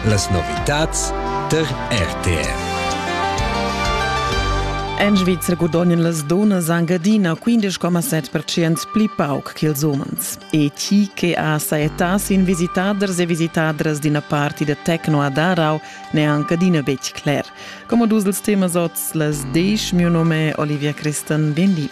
Las novitads tar RTR. En Svizra gudognan las donas anche adina 15,7% pli pauc che ils umens. E chi che ha sa età sin visitaders e visitadras d'ina party da techno a Darau n'è anche adina betg cler. Come dus dels temas oz, las desch, mio nome è Olivia Christen, bien di.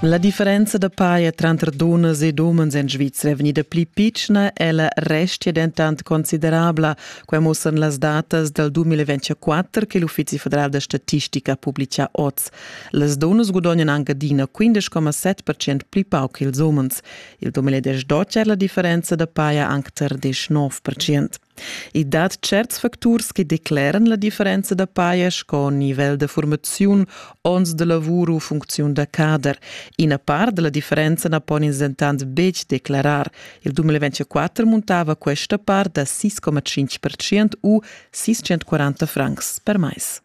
La differenza da paia tranter dunnas ed umens en Svizra è vegnida pli pitschna, ella restia dentant considerabla. Quai musssan las datas dal 2024 che l'Uffizi federal da statistica ha publitgà oz. Las dunnas gudognan anc adina 15,7% pli pauc ch'ils umens. Il 2012 è la differenza da paia anc tar 19%. I dat tscherts facturs che decleran la differenza da paja sco nivel da formaziun, onns da lavur u funcziun da cader. Ina part da la differenza na pon ins dentant betg declarar. Il 2024 muntava questa part da 6,5% u 640 francs per mais.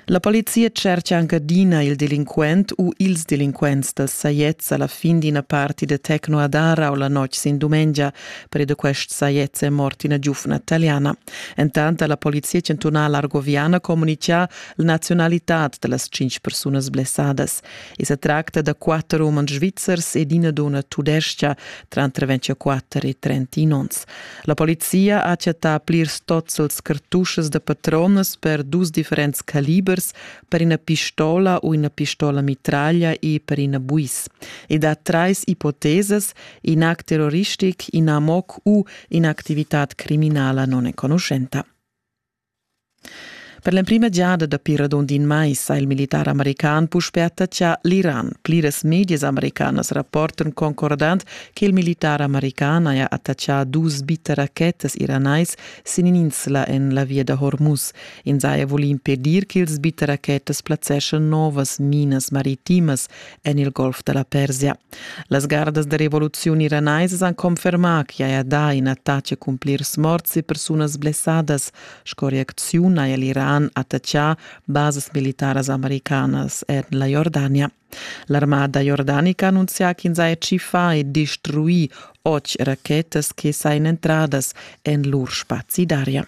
La polizia tschercha anc adina il delinquent u ils delinquents da sajets a la fin d'ina party da techno a Dara o la notg sin dumengia. Per da quests sajets è mort ina giufna taliana. Entant ha la polizia chantunala argoviana communitgà la nazionalitad da las tschintg persunas blessadas. I sa tracta da quatter umans svizzers ed ina dunna tudestga, tranter 24 e 31 onns. La polizia ha chattà plirs tozzels cartuschas da patronas per dus differents calibers, per ina pistola u ina pistola mitraglia e per ina buis. Ed ha trais ipotesas, in act terroristic, in amoc u in'activitad criminala non enconuschenta. Per l'emprima giada dapi radund in mais ha il militar american puspè attacchà l'Iran. Pliras medias americanas rapportan concordant che il militar american haja attachà dus bitteracchettas iranais sin in'insla en la via da Hormuz. Ins haja vulì impedir ch'ils bitteracchettas plazzeschan novas minas maritimas en il Golf da la Persia. Las gardas da revoluziun iranaisas han confermà ch'i haja dà in attach a cumplirs morts e persunas blessadas. Sco reacziun haja l'Iran attaccà basas militaras americanas en la Jordania. L'armada jordanica annunzia ch'ins haja tschiffà e destruì otg rachetas che sajan entradas en lur spazi d'aria.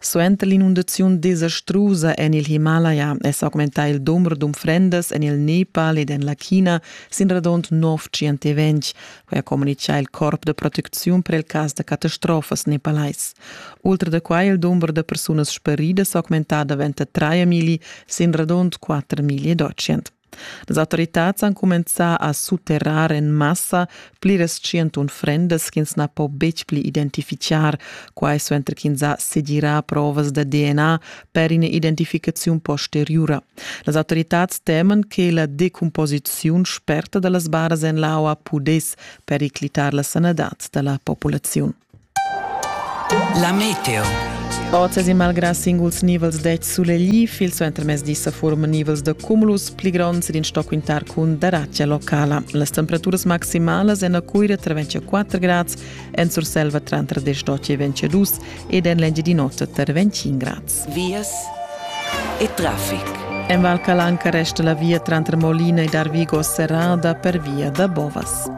Suenter l'inundaziun desastrusa en il Himalaya è s'augmentà il dumber d'unfrendas en il Nepal ed en la China sin radund nov tschientaventg, quai ha communitgà il corp da protecziun per il cas da catastrofas nepalais. Ultra da quai è il dumber da persunas sparidas augmentà da 23 migli sin radund 4 migli e 200. Las autoritads han cumenzà a sutterrar en massa pliras tschient unfrendas ch'ins na po betg pli identifichar, quai suenter ch'ins ha segirà provas da DNA per ina identificaziun posteriura. Las autoritads teman che la decumposiziun sperta da las baras en l'aua pudess periclitar la sanadad da la populaziun. La meteo. Oz e malgrà singuls nivels dets sulegli, fil suentermezdi sa forman nivels da cumulus pli gronds ed in stoc quintar cun daratgia locala. Las temperaturas maximalas en la Cuira tra 24 grads, en Surselva tra 10 e 22 ed en l'Engiadin'Ota tra 25 grads. Vias e traffic. En Val Calanca resta la via trantre Molina ed Arvigo serrada per via da Bovas.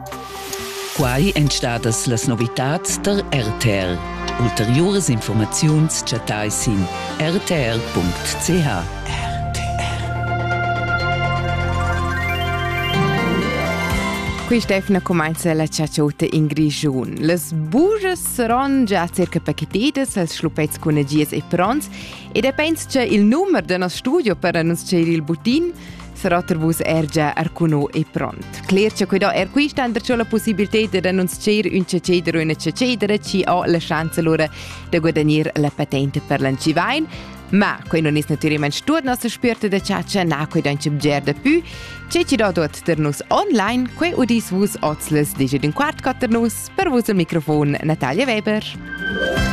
Quai èn stadas las novitads tar RTR. Ulteriuras informaziuns chattai sin rtr.ch. Quist'efna cumainza la chatschuta in Grischun. Las bujas saron già circa pachetidas, els schluppets cun agias e pronts e depends cha il numer da nos studio per annunzchar il butin Serater vus er già arcuno e pront. Cler che quei da er quista and perciò la possibilità da annunzier un ceceder o una cecedera ci ha la chance lura da guadagnare la patente per l'Ancivain, ma quei non es naturalmente tuot nostra spirta da caccia na quei dan ci bger da più. Ce ci da dot ter nus online, quei udis vus oz les digit un quart quatter nus per vus al microfon Natalia Weber.